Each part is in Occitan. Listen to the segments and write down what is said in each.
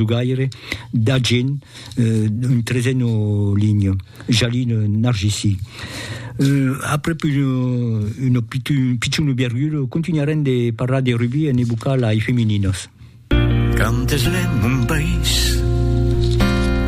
Jogaire d'argent, un trezeno ligno, jalino nargissi. Après pus un piciunu biargudo, continuarem de parlar de rugbi en evocar lai femininos. Quand es lè mon país,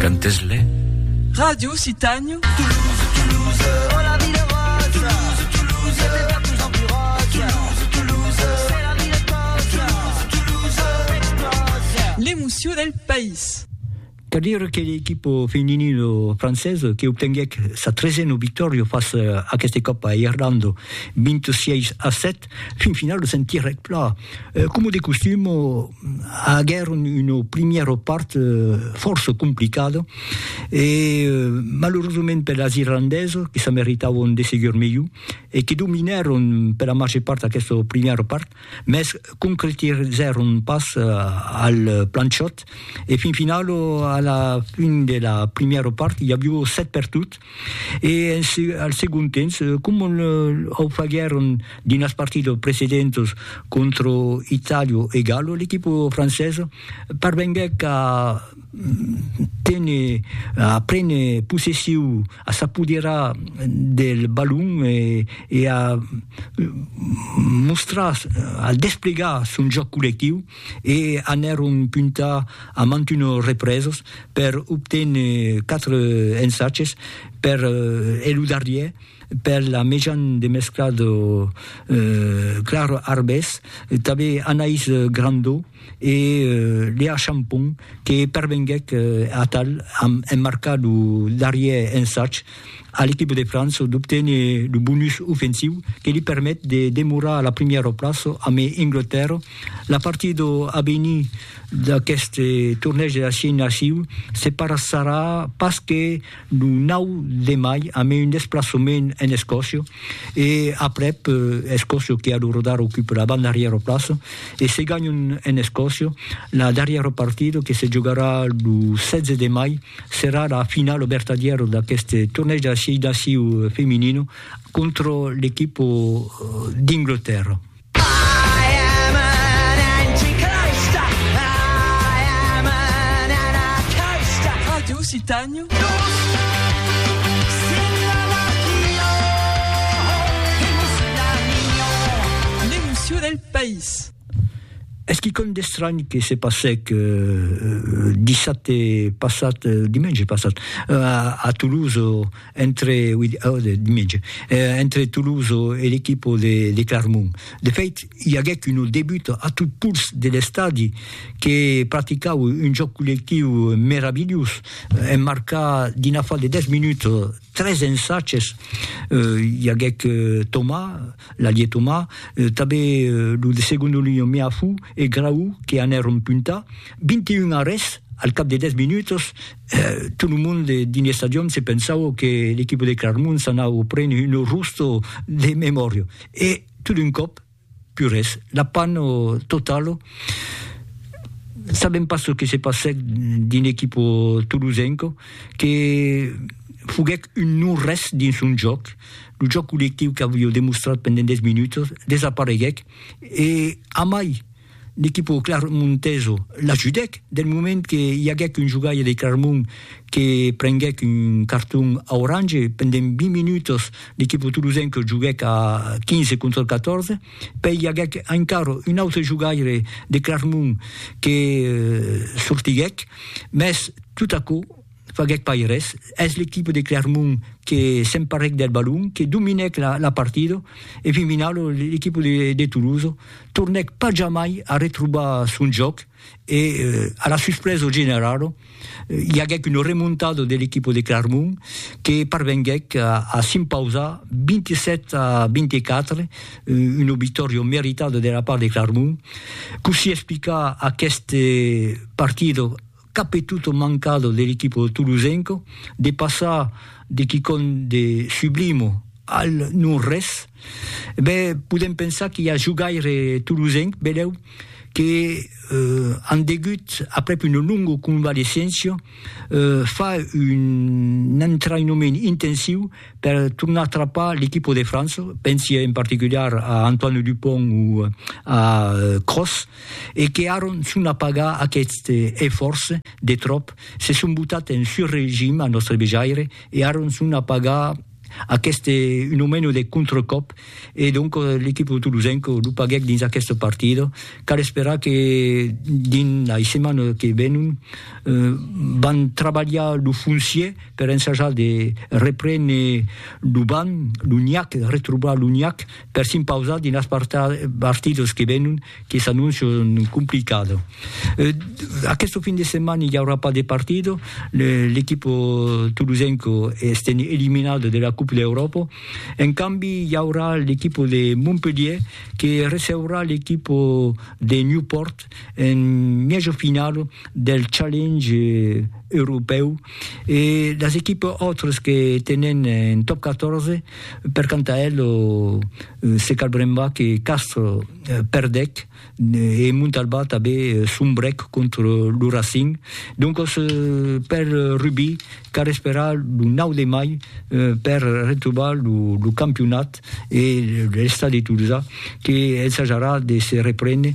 quand es lè. Radio Citània. L'emocion del país. Cal dire que l'equipa feminina francesa que obtenguèc sa tresena victòria fàcia aquesta còpa a Irlanda, 26 a 7, Fin final lo sentirèc plan. Coma de costum, aguèron una primièra part fòrça complicada e malerosament per las irlandesas que se meritàvon de segur melhor e que dominèron per la màger part aquesta primièra part, mès concretizèron pas al plan chòt e fin final a la fin de la primièra part i avió 7 pertuts. E en se, al segon temps, coma au faguèron dins las partidas precedentas contra Itàlia e Galo, l'equipa francesa parvenguèc a téner, a préner possessiu, a s'apoderar del balon e e a mostrar, a desplegar son jòc collectiu. e anèron puntar a mantuno represos per obténer quatre ensatges per e lo darrier per la Mejan de Mesclado Clar Arbés, tanben Anaïs Grandau e Léa Champon que pervenguèc atal a emmarcar lo darrier ensatge. a l'equipa de França d'obténer lo bonus ofensiu que li permet de demorar a la primièra plaça amb Englotèrra. La partida a venir d'aquest tornèg de la Six Naciu se parasarà pas que lo 9 de mai amb un desplaçament en Escòcia e aprèp Escòcia que alorodarà ocupa la banda arrièra plaça e se ganhan en Escòcia la darrièra partida que se jogarà lo 16 de mai Serà la finala vertadièra d'aquest tornèg de sièis d'aciu feminino contra l'equipa d'Inglotèrra. Radio Occitània. L'emocion del país. Es quicòm d'estranh que se passèc dissabte passat, dimenge passat, a Toulouse, entre, oui, dimenge, entre Toulouse e l'equipa de Clermont. De fèit, i aguèc una debuta a tot pols de l'estadi que practicau un jòc collectiu meravilhós, en marcar dins l'afar de 10 minuts tres ensatges. I aguèc Thomas, La Lietoma, tabé lo de segondo linho Meafu e Graou que anèron punta, 21 a res, al cap de 10 minutos, tot lo monde dins l'estadion se pensava que l'equipa de Clarmont s'anava prene un rusto de memòria e tot d'un còp, pus res, la panne totala, sabèm pas çò que se passèc dins l'equipa tolosenca que foguèc un non res dins son jòc. Lo jòc collectiu qu'avió demostrat pendent 10 minutas desapareguèc e amai l'equipa clermontesa l'ajudèc del moment que i aguèc un jogaire de Clermont que prenguèc un carton aurange. Pendent 20 minutas l'equipa tolosenca joguèc a 15 contra 14, pèi i aguèc encara un autre jogaire de Clermont que sortiguèc, mès tot aquò faguèc pas res, es l'equipe de Clermont que s'emparèc del balon, que dominèc la partida e fin finau l'equipe de Toulouse tornèc pas jamai a retrobar son jòc e a la suspresa generala i aguèc una remontada de l'equipe de Clermont que parvenguèc a s'impausar 27 a 24, una victòria meritada de la part de Clermont. Cossí explicar aquesta partida Cap e tot mancado de l'equipo tolosenco de passar de quicòm de sublimo al non res, be podem pensar qu'i a jogaire tolosenc, benlèu, que an degut, aprèp una longa convalescéncia, far un entraïnament intensiu per tornar trapar l'equipo de França, pensi en particular a Antoine Dupont o a Kroos, e que aron son a pagar aqueste efòrç de tròp, se son botat en sur regim a nòstre vejaire e aron son a pagar aqueste un o meno de contracòp e donc l'equipo tolosenc lo paguèc dins aqueste partida, cal esperar que dins lei setmanas que venon van trabalhar lo foncier per ensajar de reprene lo banc, lo nhac, retrobar lo nhac. per s'impausar dins las partidas que venon que s'annoncian complicado. Aquesto fin de setmana i aurà pas de partido, l'equipo tolosenco estèn eliminado de la Coupe d'Europa, en cambi i aurà l'equipo de Montpelhier que receurà l'equipo de Newport en mièja finala del Challenge europèu e las equipas autras que tenon un Top 14 Per quant a el, se cal brembar que Castres perdèc e Montalbà tanben sombrèc contra lo Racing. Doncas, per Rubí, cal esperar lo 9 de mai per retrobar lo campionat e l'Estadi de Tolosa que ensajarà de se reprene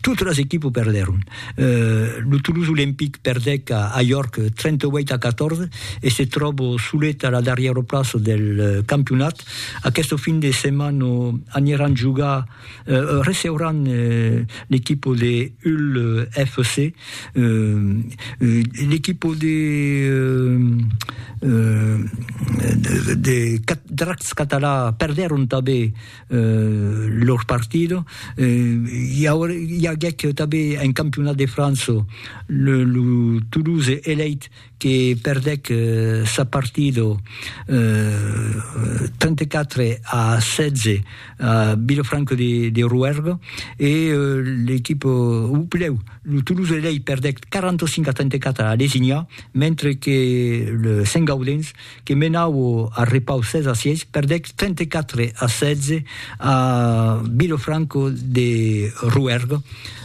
Totes las equipes perdèron. Lo Toulouse Olympique perdèc a York 38 a 14 e se tròba solet a la darrièra plaça del campionat. Aquesta fin de setmana aniran jogar, receuràn l'equipa de Hull FC. L'equipa de Dracs Català perdèron tanben eh, lor partido, eh, i aguèc tanben en campionat de França lo, lo Toulouse Elite que perdèc sa partido eh, 34 a 16 a Vilafranca de, de Rouergue e l'equipa, o plèu, lo Toulouse Elite perdèc 45 a 34 a Lesignà, mentre que le Sent Gaudens que menau a repau 16 a 6, perdec 34 a 16 a Vilofranco de Rouergue.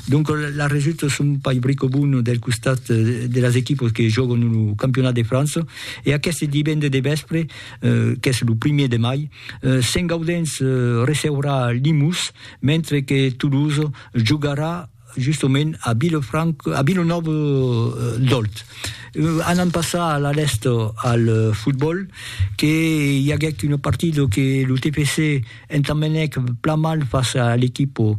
Donc la resulta son pas brico bona del costat de las equipas que jògan lo campionat de França e aqueste divendres de vèspre, qu'es lo primièr de mai, Sent Gaudens receurà Limous, mentre que Toulouse jogarà justement a Vilefranca, a Vilanòva d'Òlt. Anam passar a la lèsta al fotbòl, que i aguèc una partida que lo TFC entambenèc plan mal fàcia a l'equipa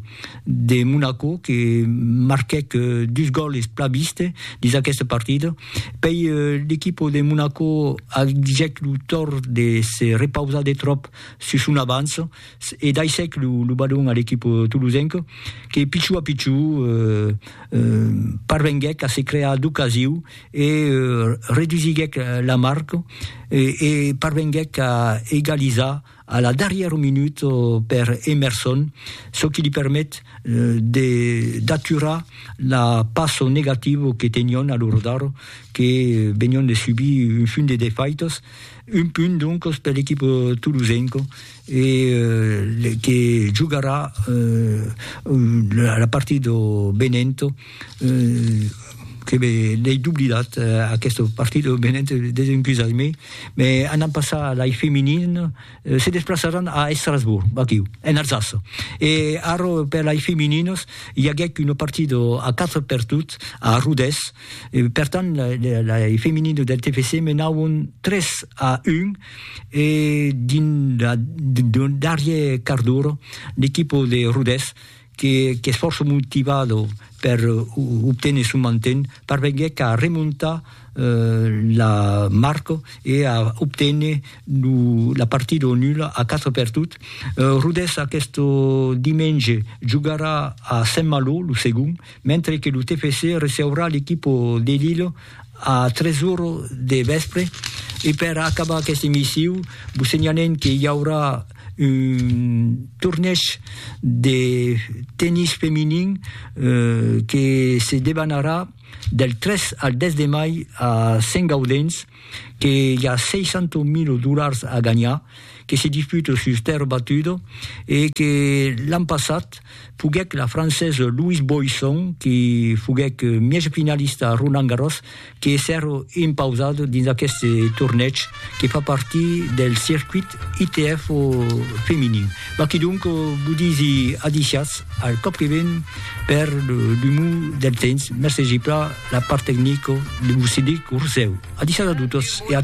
de Monaco, que marquèc dus gòles plan viste dins aquesta partida. Pei l'equipa de Monaco agèt lo tòrt de se repausar de tròp sus son avança, e daissèc lo badon a l'equip tolosenc que pichou a pichou parvenguèc a se crear d'ocasiu e redusiguèc la marc e parvenguèc a egalizar a la darrièra minut per Emerson, çò qui li permet d'aturar la passo negativa que tenion a lo rodar que venion de subir un funt de defaitas, un punt doncas per l'equip tolosenc. e que jogarà la partida de Benevento que l'ai doblidat aquesta partida de Benevento desencusatz-me me anam passar lai feminin se desplaçaràn a Estrasbourg aquiu en Alsace e ara per lai femininas i aguèc una partida a 4 per tot a Rodés e per tant lai femininas del TFC menàvon 3 a 1 e dins la darrier quart d'ora l'equipo de Rodés que qu'es fòrça motivado per obténer son manten parvenguèc a remontar la marca e a obténer lo la partida o nula a 4 per tot. Rodés aquest dimenge jogarà a Saint-Malo lo segond mentre que lo TFC receurà l'equipo de Lille A tres ora de vèspre. E per acabar aqueste emissiu, vos senhalem que i aurà un tornèish de tennis feminin que se debanarà del 3 al 10 de mai a Sent Gaudens, que i a 600.000 dolars a ganhar, que se disputa sus terra batuda e que l'an passat foguèt la francés Louise Boisson qui foguèt mièja finalista a Roland Garros que èsser impausada dins aqueste tornèig que fa partir del circuit ITF feminin. Bah quidonc vos disi adisiatz al còp que ven per l'umor del temps. Mercegi plan la part tecnica de vos cedir lo rosèu. Adisiatz a totes e a.